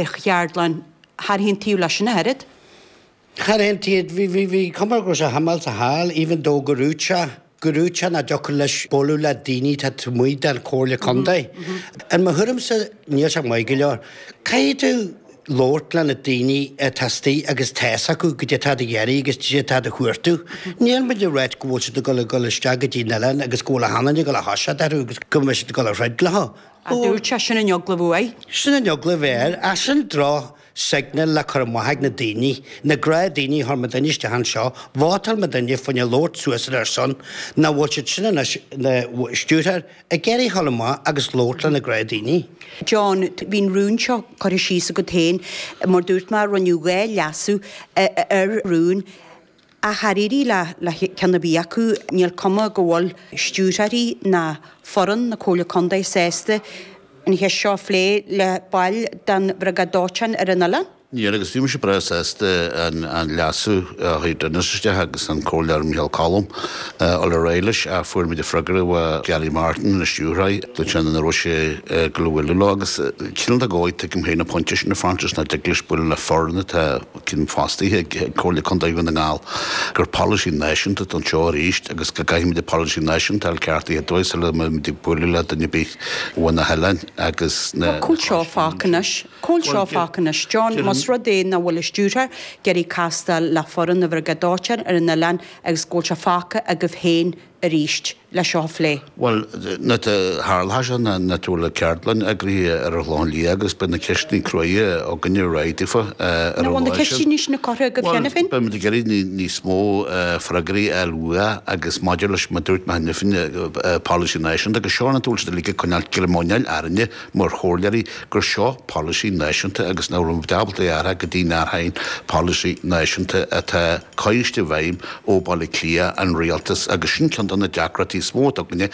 ar cheardlann char aontaigh leis sin ach oiread. Char aontaigh, bhí, bhí, bhí cuma go raibh sé thamall sa hall even though go raibh sé, go raibh sé nach dtiocfadh leis bualadh le daoine taobh amuigh den Chomhairle Contae. In mo thuairimse, níl sé maith go leor. Caithfidh tú labhairt le na daoine atá astoigh agus tá a fhios acu goidé atá á iarraidh agus goidé atá á chuartú. Níl muid ag ráit go bhfuil siad ag dul ag dul isteach go dtí an oileán agus go bhfuil a hanlainn ag dul a thoiseacht orthu agus go mbeidh siad ag dul a throid leo. a dúirt sé. Sin an eagla uaidh. Sin an eagla a bheith air. Ach sin droch signal le cur amach ag na daoine, na gnáth daoine a chuir muidne isteach anseo. Vótáil muidne fá choinne labhairt suas ar a son. Nach bhfuil siadsan, na stiúrthóirí, ag iarraidh a ghabháil amach agus labhairt le na gnáth daoine? John, bhí an rún seo curtha síos agat féin. Mar dúirt mé, rinneadh dhá leasú ar an rún. Ach dáiríre le ceann ar bith acu, níl cuma go bhfuil stiúrthóirí ná foireann na Comhairle Contae sásta an cheist seo a phlé le baill den Bhriogáid Dóiteáin ar an oileán. Níl agus bhí mise breá sásta an leasú a chuir Dennis isteach agus an Comhairleoir Micheál Choilm dul ar aghaidh leis ach fuair muid an freagra ó Gary Martin, an stiúrthóir, nach raibh sé ag gabháil a bhualadh leo agus cineál de dhóigh tuigim féin an pointe sin a Frances nach dtig leis bualadh le foireann atá cineál fostaithe ag Comhairle Contae Dhún na nGall gur polasaí náisiúnta atá anseo arís agus go gcaithfimid an polasaí náisiúnta a fháil ceartaithe dóibh sula mbeimid ag bualadh le duine ar bith ó mhuintir an oileáin agus cá bhfuil sé fágtha anois, John, más rud é nach bhfuil an stiúrthóir ag iarraidh castáil le foireann an Bhriogáid Dóiteáin ar an oileán agus go bhfuil sé fágtha agaibh féin arís le seo a phlé. Bhuel, tharla sé ná go bhfuil ceardlann eagraithe ar an Chlochán Liath agus beidh na ceisteanna cruaidhe againne réidh daofa ar an lá sin. An bhfuil na ceisteanna sin curtha agaibh cheana féin? Bhuel, beimid ag iarraidh níos mó freagraí a fháil uatha agus maidir leis mar dúirt mé cheana féin, polasaí náisiúnta agus seo an dóigh a bhfuil siad uilig ag coinneáilt greim muineáil orainne, mar chomhairleoirí gur seo polasaí náisiúnta agus nach raibh siad ábalta é a athrach go dtí go n-athraíonn polasaí náisiúnta atá curtha i bhfeidhm ó Bhaile Átha Cliath, an rialtas, agus sin ceann de na deacrachtaí is mó atá againne,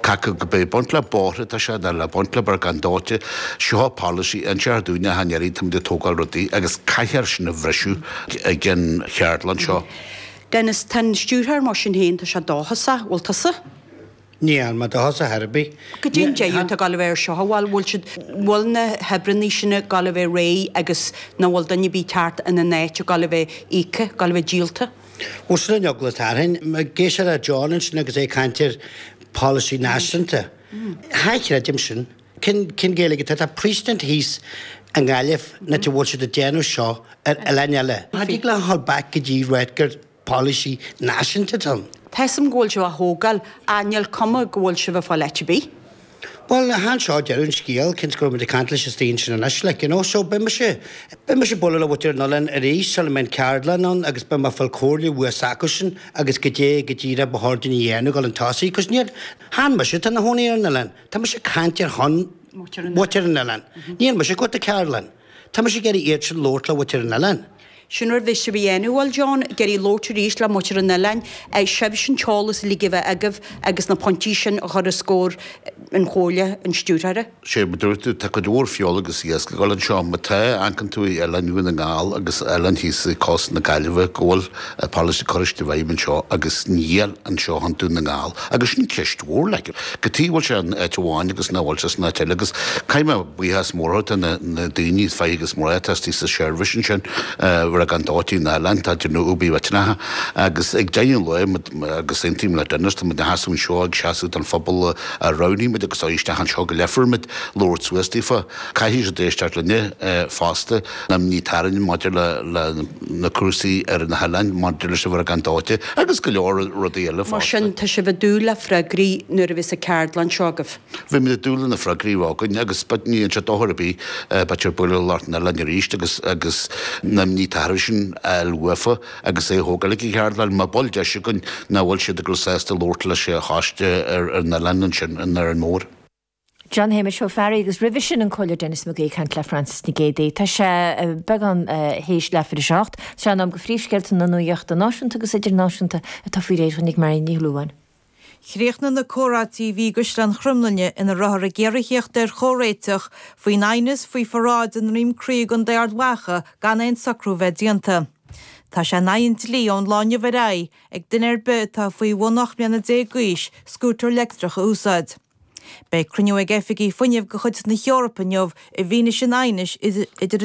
cé acu le baint le bóithre atá sé nó le baint le briogáid dóiteáin, seo polasaí a instear dúinn achan uair atáimid ag tógáil rudaí agus caithfear sin a bhriseadh ag an cheardlann seo. Dennis, tá an stiúrthóir, mar sin féin, tá sé dóchasach, bhfuil tusa? Níl mé dóchasach ar bith. Goidé an deireadh atá ag gabháil a bheith air seo, an bhfuil siad, bhfuil na hoibreannaí sin ag gabháil a bheith réidh agus nach bhfuil duine ar bith curtha ina n-áit, ag gabháil a bheith íoctha, ag gabháil a bheith díolta. Bhuel sin an eagla atá orainn. Ag éisteacht le John ansin agus é ag caint ar polasaí náisiúnta. Cha chreidim sin. Cén cén Ghaeilge atá, tá precedent thíos i nGaillimh, an áit a bhfuil siad ag déanamh seo ar oileáin eile. Cha dtig leat a ghabháil back go dtí Redcar. polasaí náisiúnta don. Tuigim go bhfuil sibh á thógáil, ach níl cuma go bhfuil sibh ag fáil áit ar bith. Bhuel, chan é seo deireadh an scéil, cinnte go raibh muid ag caint leis an staon sin anois, like, you know, so beidh mise, beidh mise ag bualadh le muintir an oileáin arís sula mbeidh an ceardlann ann agus beidh mé ag fáil comhairle uafa is acusan agus caidé go díreach ba chóir dúinn a dhéanamh ag dul chun tosaigh, 'cos níor chan mise atá ina chónaí ar an oileán, tá mise ag caint ar shon muintir an oileáin, níl mise ag tabhairt do ceardlann. Tá mise ag iarraidh iad sin labhairt le muintir an oileáin. Sin rud a bheas sibh a dhéanamh, an bhfuil, John, ag iarraidh labhairt arís le muintir an oileáin, is sibhse an t-eolas uilig a bheith agaibh agus na pointí sin a chur os comhair an Chomhairle, an Stiúrthóra. Sea, mar a dúirt tú, tá cuid mhór feola agus iasc ag dul anseo, má tá, amharcann tú i oileáin Dhún na nGall agus oileáin thíos i gcósta na Gaillimhe go bhfuil an policy curtha isteach i bhfeidhm anseo agus níl anseo i gContae Dhún na nGall agus sin ceist mhór like cad chuige a bhfuil sé in áit amháin agus nach bhfuil sé san áit eile agus caithfidh mé buíochas mór a thabhairt do na na daoine fir agus mná atá istigh sa seirbhís ansin bhriogáid dóiteáin an oileáin atá ag déanamh obair mhillteanach agus ag deireadh an lae muid agus aontaím le Dennis tá muid ina sheasamh anseo ag seasamh don phobal a roghnaigh muid agus ó isteach anseo go ligfear muid labhairt suas daofa Caithfidh siad éisteacht linne fosta, ní tarraingt maidir le na cúrsaí ar na hoileáin, maidir leis an bhriogáid dóiteáin agus go leor rudaí eile fosta. Mar sin, tá sibh ag dúil le freagraí nuair a bheas an ceardlann seo agaibh? Beimid ag dúil le na freagraí a bheith againn agus ní dhéanann sé dochar ar bith, beidh siad ag bualadh le lucht an oileáin arís agus Noam ní tathar sinn a fháil uafa agus é a thógáil ag an cheardlann, má bhfuil deis againn, nach bhfuil siad ag raibh sásta labhairt leis a choiste ar an oileán ansin, in Árainn Mhór. John Shéamais Ó Fearraigh agus roimhe sin an Comhairleoir Denis Mac Aoidh ag caint le Frances Nic Géadaigh. Tá sé beagán théis leathuair théis a hocht. Sé in am do phríomhscéalta na nuaíochta náisiúnta agus idirnáisiúnta atá faoi réir dúinn ag Marion Ní Shúilleabháin. Chríochnaigh na comhráití a bhí i gCaisleán Chromghlinne ina rabhthar ag iarraidh theacht ar chomhréiteach faoin aighneas faoi pharáid i nDroim Crí i gContae Ard Mhacha gan aon socrú a bheith déanta. Tá sé in aghaidh an dlí ón lá inniu ar aghaidh ag duine ar bith atá faoi bhun ocht mbliana déag d'aois scútar leictreach a úsáid. Beidh cruinniú ag oifigigh fuinnimh de chuid na hEorpa inniu i bhfianaise an aighnis idir an.